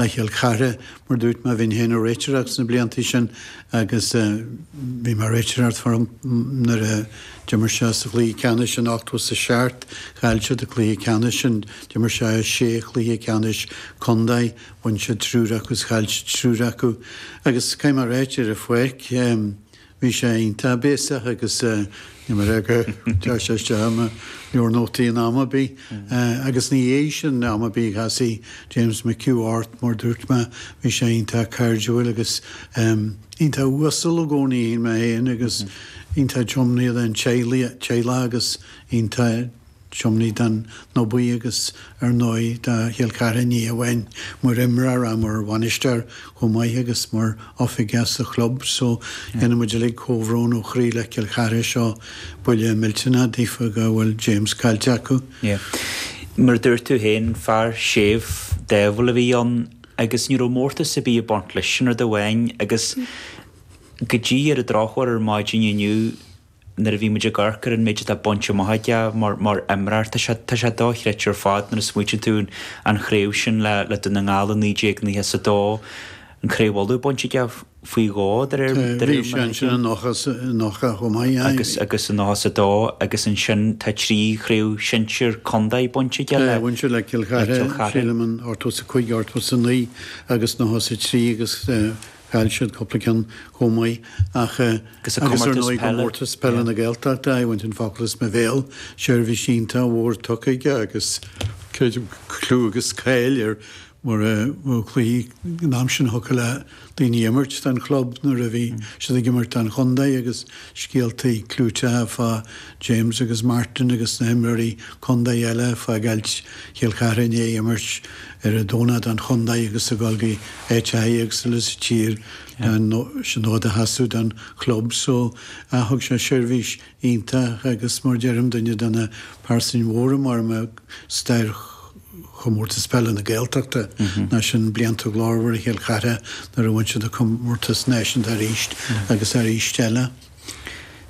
le Cill Chartha, mar a dúirt mé, bhí mé féin i mo réiteoir sna blianta sin agus bhí mé ag réiteoireacht fosta nuair a d'imir sé sa chluiche ceannais in ochtó is a seacht, chaill siad an cluiche ceannais sin, d'imir sé i sé chluiche ceannais contae, bhain siad triúr acu is chaill siad triúr acu agus caithfidh mé a réiteach ar a phoic, Bhí sé iontach béasach agus níor éirigh go dteachaidh sé isteach i mo leabhar nótaí in am ar bith. Agus ina dhiaidh sin, am ar bith a chasfadh James McHugh ort, mar dúirt mé, bhí sé iontach cairdiúil agus iontach uasal i gcónaí, shíl mé féin, agus iontach tiomnaithe don teaghlach agus iontach. Tiomnaithe don Abhainn Bhuí agus ar ndóigh do Chill Chartha ní amháin mar imreoir ach mar bhainisteoir chomh maith agus mar oifigeach sa chlub so déanann muid uilig comhbhrón ó chroí le Cill Chartha seo buille millteanach daofa go bhfuil James caillte acu. Yeah. Mar a dúirt tú féin, fear séimh, dáimhiúil a bhí ann agus ní raibh mórtas ar bith ag baint leis sin rud amháin agus go dtí ar an drochuair ar maidin inniu, nuair a bhí muid ag amharc ar an méid atá bainte amach aige mar imreoir, tá sé, tá sé dochreidte ar fad nuair a smaoitíonn tú ar an chraobh sin le, le Dún na nGall i naoi déag nócha is a dó, an Craobh Uladh bainte aige faoi dhó de réir, de réir Bhí sé ansin i nócha is, i nócha chomh maith, aye, agus, bhí. agus i nócha is a dó agus ansin tá trí chraobh shinsir contae bainte aige le, Aye, bhain sé le Cill le Chartha, Cill Chartha. sílim in ochtó is a cúig, ochtó is a naoi agus nócha is a trí agus eh, Chaill siad cúpla ceann chomh maith ach eh. Agus ar ndóigh i gcomórtas peile na Gaeltachta, bhain tú an focal as mo bhéal, seirbhís iontach mhór tugtha aige agus creidim clú agus cáil air mar eh bhuaigh cluichí an am sin cheadaítí le daoine imirt don chlub nuair a bhí siad ag imirt don chontae agus scéaltaí clúiteacha fá James agus Martin agus na himreoirí contae eile ag fágáil Chill Chartha i ndiaidh imirt ar an Domhnach don chontae agus a dhul go áiteachaí éagsúla sa tír le an fód a sheasamh don chlub so thug sé seirbhís iontach agus mar deirim duine de na pearsain mhóra mar sin i stair Chomórtas Peile na Gaeltachta, i rith na mblianta glórmhara Chill Chartha nuair a bhain siad an comórtas náisiúnta arís agus arís eile.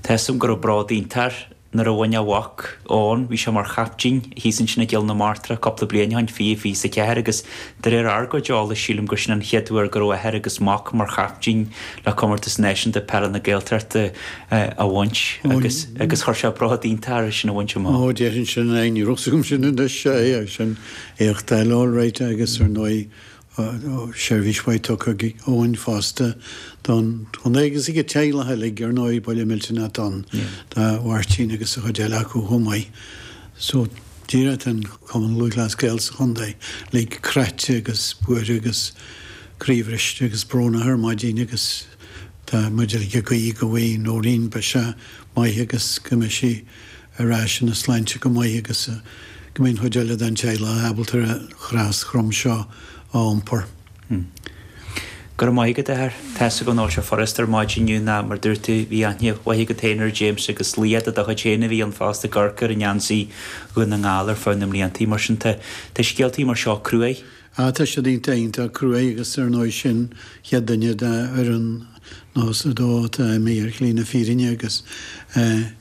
Measaim go raibh bród iontach air nuair a bhain a mhac, Eoin, bhí sé mar chaiptín, thíos ansin i gCill na Martra cúpla bliain ó shin, fiche fiche is a 4 agus de réir ár gcuid eolais sílim gur sin an chéad uair go raibh athair agus mac mar chaiptín le comórtas náisiúnta peile na Gaeltachta. a bhaint agus agus chuir sé bród iontach air é sin a bhaint amach. Ó, déarfainn sin, aye, ní raibh 's agam sin anois, sea, aye, sin éacht eile alright agus ar ndóigh seirbhís mhaith tugtha ag Eoin fosta don chontae agus ag an teaghlach uilig ar ndóigh, Baile Milton at an do Mháirtín agus a chuid eile acu chomh maith so díreach tá an Cumann Lúthchleas Gael sa chontae uilig craite agus buartha agus croíbhriste agus brónach ar maidin agus. Tá muid ag guí go bhfaighe Noreen biseach maith agus go mbeidh sí ar ais ina sláinte go maith agus go mbeidh an chuid eile den teaghlach ábalta ar an chros throm seo a iompar. Go raibh maith agat, a Athair. Tá's agam nach bhfuil seo furast ar maidin inniu nó mar dúirt tú, bhí aithne mhaith agat féin ar James agus leaid de do chuid féin a bhí ann fosta i gCorcaigh ar an ngeansaí Dhún na nGall ar feadh na mblianta mar sin tá scéaltaí mar seo cruaidh. Ah, tá siad iontach iontach cruaidh agus ar ndóigh sin an chéad duine de fhoireann nócha a dó atá imithe ar shlí na fírinne agus eh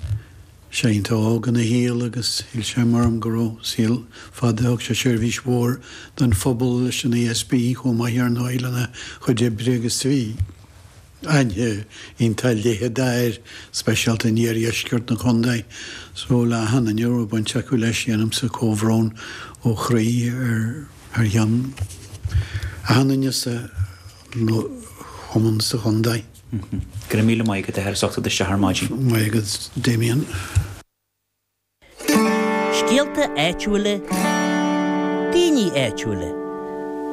sé iontach óg ina shaol agus shíl sé mar orm go raibh saol fada, thug sé seirbhís mhór don phobal leis an ESB chomh maith ar ndóigh lena chuid oibre agus bhí. Aithne iontach leitheadach air speisialta in iardheisceart na condae so le achan duine a raibh baint acu leis, déanaimse comhbhrón ó chroí thar ceann achan duine sa chumann sa chondae. Go raibh míle maith agat a Sheán, as ucht duit seo ar maidin. Maith agat Damien. Scéalta áitiúila, daoine áitiúila.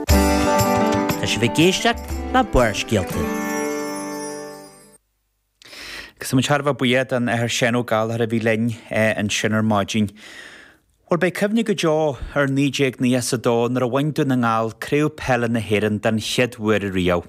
Tá sibh ag éisteacht le Barrscéalta. Agus tá muid thar a bheith buíoch den Athair Seán Ó Gallchóir a bhí linn ansin ar maidin. Bhuel, beidh cuimhne go deo ar 1992 nuair a bhain Dún na nGall Craobh Peile na hÉireann den chéad uair riamh.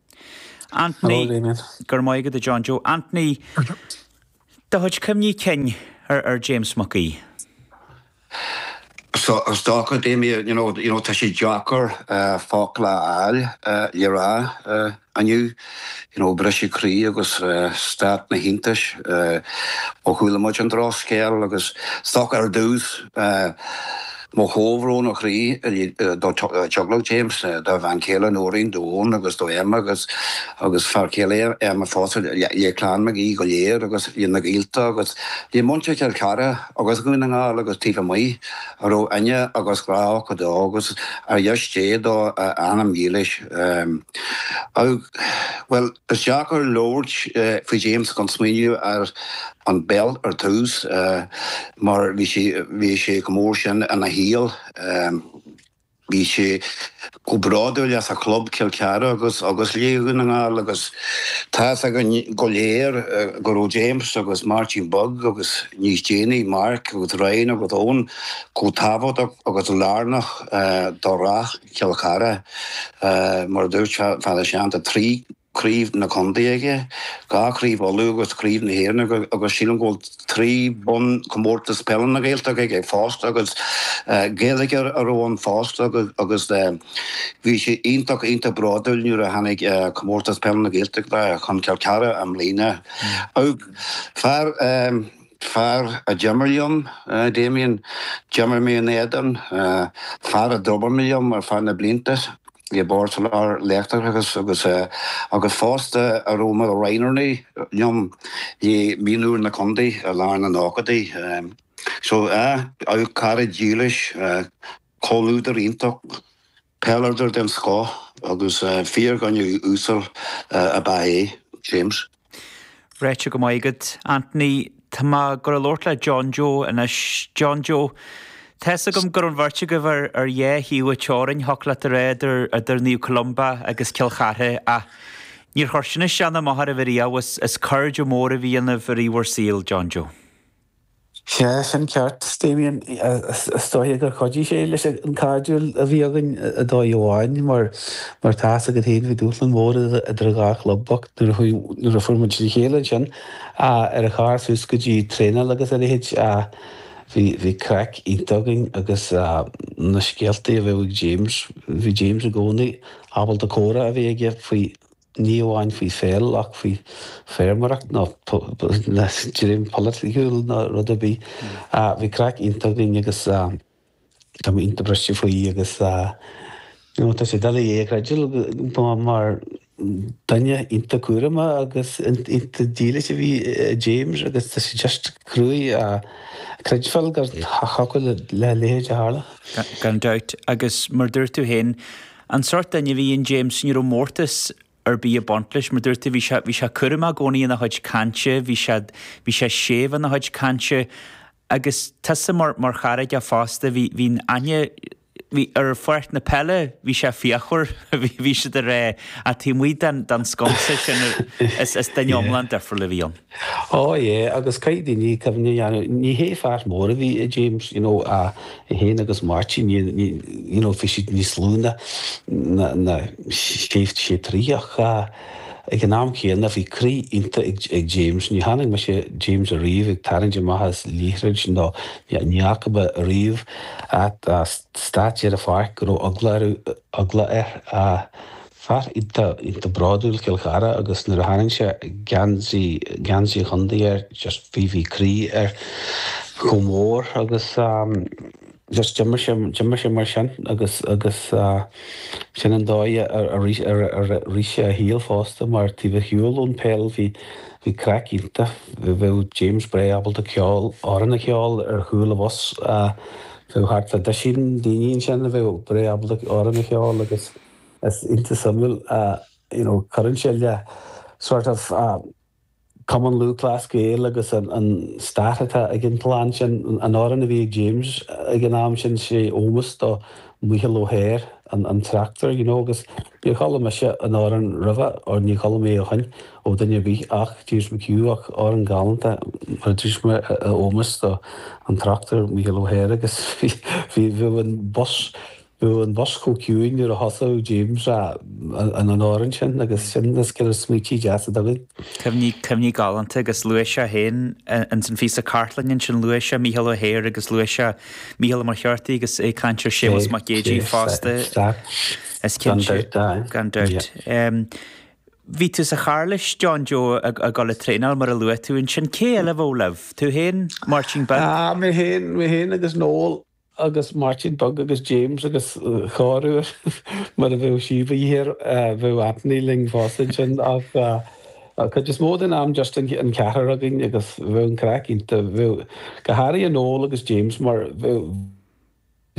Anthony, Go raibh maith agat, a John Joe. Anthony, Do chuid cuimhní cinn ar James Mac Aoidh? So, is dócha, Damien, you know, you know tá sé deacair focla a fháil le rá inniu, you know briseadh croí agus stát na hiontais ó chuala muid an drochscéal agus is dócha ar dtús, Mo chomhbhrón ó chroí uilig do Teaghlach James, dá bhean chéile Noreen, d'Eoin agus do Emma agus agus fear céile Emma fosta, le Clann Mhic Aoidh go léir agus le na gaolta agus le muintir Chill Chartha agus Dhún na nGall agus taobh amuigh, a raibh aithne agus grá acu dó agus ar dheis Dé dá anam dílis. Augh. Bhuel, is deacair labhairt faoi James gan smaoineamh ar an bpeil ar tús. mar bhí sé, bhí sé go mór sin ina shaol. Bhí sé chomh bródúil as a chlub, Cill Chartha, agus, agus le Dún na nGall, agus tá's againn go léir go raibh James agus Martin Beag agus níos déanaí Mark agus Ryan agus Eoin chomh tábhachtach agus lárnach do rath Chill Chartha, mar a dúirt Fearghas ansin, trí craobh na condae aige, dhá chraobh Uladh agus craobh na hÉireann agus sílim go bhfuil trí bhonn comórtas peile na Gaeltachta aige fosta agus Gael go smior a bhí ann fosta agus bhí sé iontach iontach bródúil nuair a tháinig comórtas peile na Gaeltachta chun Cill Cartha i mbliana. Fear. Fear a d'imir mé leis, Damien. D'imir mé in éadan fear a d'obair liom ar fud na mblianta i mBord Soláthair an Leictreachais agus agus fosta a raibh mar roghnóirí liom i mhionúir na Condae i lár na nóchadaí. So, ah, cara dílis, comhluadar iontach. Peileadóir den scoth agus fear gnaíúil uasal ab ea é, James. Ráite go maith agat, Anthony. Tá mé ag gabháil a labhairt le John Joe anois. John Joe, tá's agam go raibh an bheirt agaibh ar dhá thaobh an teorainn, thiocfadh leat a rá, idir Naomh Columba agus Cill Chartha, ach níor chuir sin as in aon am duit ariamh, ba chairde móra a bhí ionaibh i rith bhur saoil, John Joe. Sea, sin ceart, Damien, is dócha gur chuidigh sé leis an cairdiúil a bhí againn ar dóigh amháin, mar tá a fhios agat féin bhí dúshlan mór idir an dhá chlub ach nuair a fuair muid le chéile ansin ar an charr suas go dtí traenáil agus a leithéid, bhí craic iontach againn agus na scéaltaí a bheadh ag James, bhí James i gcónaí ábalta comhrá a bheith aige faoi. ní amháin faoi pheil ach faoi feirmeoireacht nó dream polaitíochta nó rud ar bith. Bhí craic iontach againn agus tá mé iontach briste faoi agus tá sé doiligh é a chreidiúint mar duine iontach cúramach agus iontach dílis a bhí i James agus tá sé just cruaidh a chreidbheáil go dtiocfadh lena leithéid a tharla. Gan dabht, agus mar dúirt tú féin, An sórt duine a bhí in James, ní raibh mórtas ar bith ag baint leis, mar dúirt tú, bhí sé, bhí sé cúramach i gcónaí ina chuid cainte, bhí sé, bhí sé séimh ina chuid cainte agus tusa mar, mar chara aige fosta, bhí, bhí aithne, bhí, ar pháirc na peile, bhí sé fíochmhar, bhí sé díreach, ar an taobh amuigh den, den sconsa sin is, is duine iomlán difriúil a bhí ann. Ó, yé, agus caithfidh daoine cuimhne a dhéanamh, ní hé fear mór a bhí i James, you know, ach é féin agus Máirtín, ní, ní, you know, bhí siad níos lú ná, ná, ná, sé, sé troithe, ach ag an am céanna bhí croí iontach ag, ag James, ní chonaic mise James ariamh ag tarraingt amach as liathroid nó ní, ní fhaca mé ariamh at a stáitse ar an pháirc go raibh eagla ar, eagla air, a. Fear iontach, iontach bródúil Chill Chartha agus nuair a tharraing sé geansaí, geansaí a chontae air just bhí, bhí croí air chomh mór agus just d'imir sé, d'imir sé mar sin agus, agus sin an dóigh a, a, a rith, a rith sé a shaol fosta mar taobh ar shiúl ón pheil bhí, bhí craic iontach, bheadh James breá ábalta ceol, amhrán a cheol ar chúl an bhus, bheadh thart fá doisín daoine ansin a bheadh breá ábalta amhrán a cheol agus. Is iontach suimiúil, you know, cuireann sé le sort of Cumann Lúthchleas Gael agus an stair atá ag an gclann sin, an t-amhrán a bhí ag James ag an am sin, sé ómós do Michael O'Hehir, an tráchtaire, you know, agus níor chuala mise an t-amhrán roimhe or ní chuala mé ó shin ó duine ar bith ach James McHugh ach amhrán galánta mar a dúirt mé in ómós do an tráchtaire Michael O'Hehir agus bhíodh an bus nó an bus chomh ciúin nuair a thosaigh James ar an an amhrán sin agus sin na scéalta is smaoití deasa againn. Cuimhní, cuimhní galánta agus luaigh sé féin ins an phíosa cartlainne ansin, luaigh sé Mícheál Ó hEithir agus luaigh sé Mícheál Ó Muircheartaigh agus ag caint ar Séamus Mac Géidigh fosta, is cinnte, gan dabht. Bhí tú sa charr leis John Joe ag dul ag traenáil mar a luaigh tú ansin, cé eile a bheadh libh? Tú féin, Máirtín Beag? Mé féin, mé féin agus Noel. agus Máirtín Beag agus James agus corruair mura bheadh síob thiar bheadh Anthony linn fosta ansin ach an chuid is mó den am just an ceathrar againn agus bheadh an craic iontach, bheadh go háirithe Noel agus James mar bheadh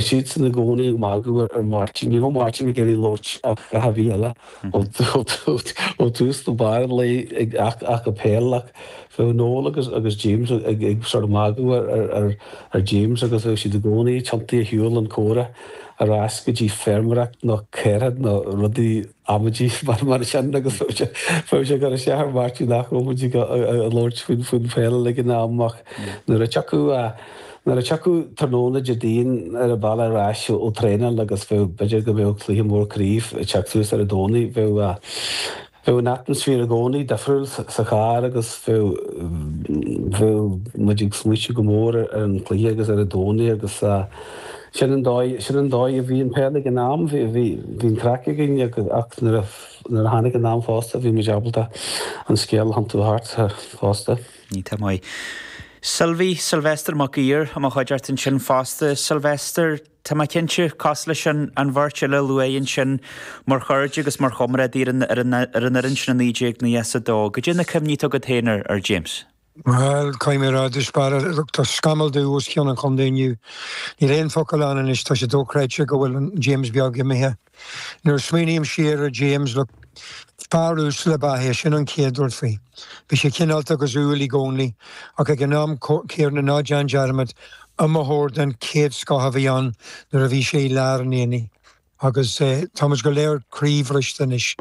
siadsan i gcónaí ag magadh ar Mháirtín, ní raibh Máirtín ag iarraidh labhairt ar a dhath ar bith eile. Ó thús go barr an lae ach peil ach bheadh Noel agus James ag sort of magadh ar James agus bheadh siad i gcónaí ag tiontú ar shiúl an comhrá ar ais go dtí feirmeoireacht nó caoirigh nó rudaí amaidí mar sin agus bheadh sé bheadh sé ag cur isteach ar Mháirtín nach raibh muid ag labhairt faoin pheil ag an am ach nuair a tiocfadh Nuair a thiocfadh tráthnóna Déardaoin ar an bhealach ar ais ó thraenáil agus bheadh, b'fhéidir go mbeadh cluiche mór craoibh ag teacht suas ar an Domhnaigh, bheadh, bheadh an atmaisféar i gcónaí difriúil sa charr agus bheadh, bheadh muid ag smaoitiú go mór ar an cluiche agus ar an Domhnaigh agus sin an dóigh, sin an dóigh a bhí an peil ag an am, bhí, bhí, bhí an craic againn agus, ach nuair a, nuair a tháinig an am fosta bhí muid ábalta an scéal a thiontú thart fosta. Iontach maith. Sylvie, Sylvester Mac Uidhir, i mo chuideachta ansin fosta. Sylvester, tá mé cinnte, cosúil leis an bheirt eile a luadh ansin, mar chairde agus mar chomrádaí ar an fhoireann sin i 1992. Goidé na cuimhní atá agat féin ar James? Bhuel, comhráidis, mar a dúirt, tá scamall dubh os cionn an chontae inniu. Níl aon focal ann anois, tá sé dóchreidte go bhfuil an James beag imithe. Nuair a smaoiním siar ar James, bhuel, fear uasal ab ea é, sin an chéad rud faoi. Bhí sé cineálta agus umhal i gcónaí, ach ag an am céanna ná déan dearmad, iomaitheoir den chéad scoth a bhí ann nuair a bhí sé i lár an aonaigh. Agus tá muid go léir croíbhriste anois.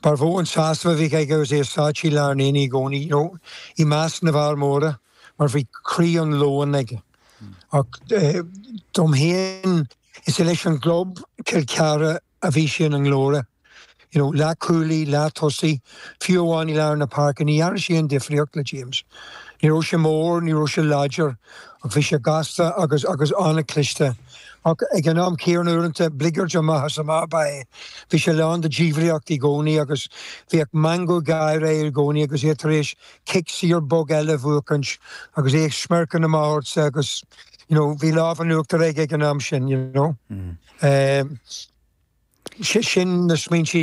Ba mhó an sásamh a bhíodh aige agus é sáite i lár an aonaigh i gcónaí, nó i measc na bhfear móra, mar bhí croí an leoin aige. Ach dom fhéin. Is é leis an gclub, Cill Chartha, a bhí sé ina nglóire. You know, leathchúlaí, leath-tosaí, fiú amháin i lár na páirce, ní dhearna sé aon difríocht le James. Ní raibh sé mór, ní raibh sé láidir, ach bhí sé gasta agus, agus an-chliste. Ach ag an am céanna, uaireanta, bligeard amach is amach ab ea é. Bhí sé lán de dhiabhlaíocht i gcónaí agus bhíodh meangadh gáire air i gcónaí agus é tar éis cic saor bog eile a bhuachaint agus é ag smirking amach ortsa agus, you know, bhí lámh an uachtar aige ag an am sin, you know. Sin na smaointe,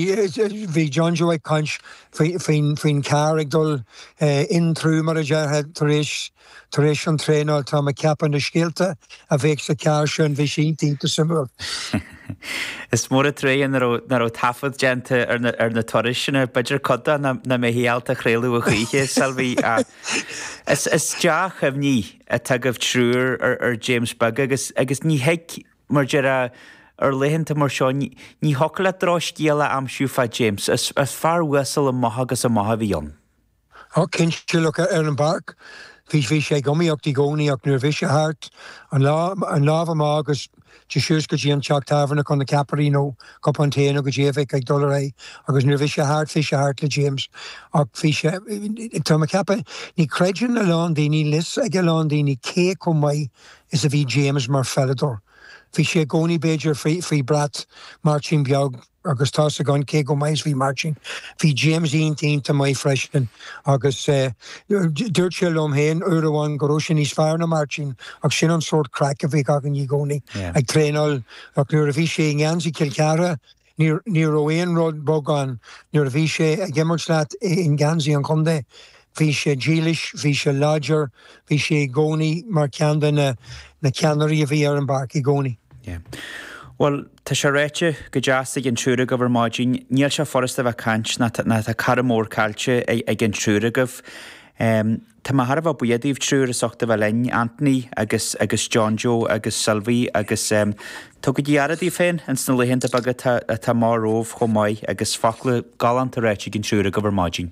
bhí John Joe ag caint faoin carr ag dul in through, mar a déarfá, tar éis an traenáil, tá mé ag ceapadh na scéalta a bheadh sa charr sin, bhí sé iontach suimiúil. Is mór an trua nach raibh taifead déanta ar na turais sin, b'fhéidir cuid de nach mbeifeá ábalta a chraoladh a choíche, a Sylvie, ach is dea-chuimhní. atá agaibh triúr ar James beag agus, agus ní thig, mar a déarfá, ar laethanta mar seo ní, ní thiocfadh leat drochscéal a aimsiú fá James, is, is fear uasal amach agus amach a bhí ann. Och, cinnte, look, ar an bpáirc, bhí, bhí sé ag iomaíocht i gcónaí ach nuair a bhí sé thart, an lá, an lámh amach agus, Dul síos go dtí an teach tábhairne chun na ceapairí nó cupán tae nó goidé a bhí ag dul ar aghaidh agus nuair a bhí sé thart bhí sé thart le James ach bhí sé, tá mé ag ceapadh, ní chreideann a lán daoine, níl fhios ag a lán daoine cé chomh maith is a bhí James mar pheileadóir. Bhí sé i gcónaí b'fhéidir faoi bhrat Máirtín Beag. agus tá's againn cé chomh maith is a bhí Mairtín. Bhí James iontach, iontach maith freisin agus dúirt sé liom féin uair amháin go raibh sé níos fearr ná Mairtín ach sin an sórt craic a bhíodh againn i gcónaí ag traenáil ach nuair a bhí sé i ngeansaí Chill Chartha ní raibh aon rud bog ann, nuair a bhí sé ag imirt leat i ngeansaí an chontae, Bhí sé dílis, bhí sé láidir, bhí sé i gcónaí mar cheann de na ceannairí a bhí ar an bpáirc i gcónaí. Yeah. Bhuel, tá sé ráite go deas ag an triúr agaibh ar maidin. Níl sé furasta a bheith ag caint nó tá cara mór caillte ag an triúr agaibh. Tá mé thar a bheith buíoch daoibh triúr as ucht a bheith linn, Anthony agus agus John Joe agus Sylvie agus tugaigí aire daoibh féin ins na laethanta beaga atá amach romhaibh chomh maith agus focla galánta ráite ag an triúr agaibh ar maidin.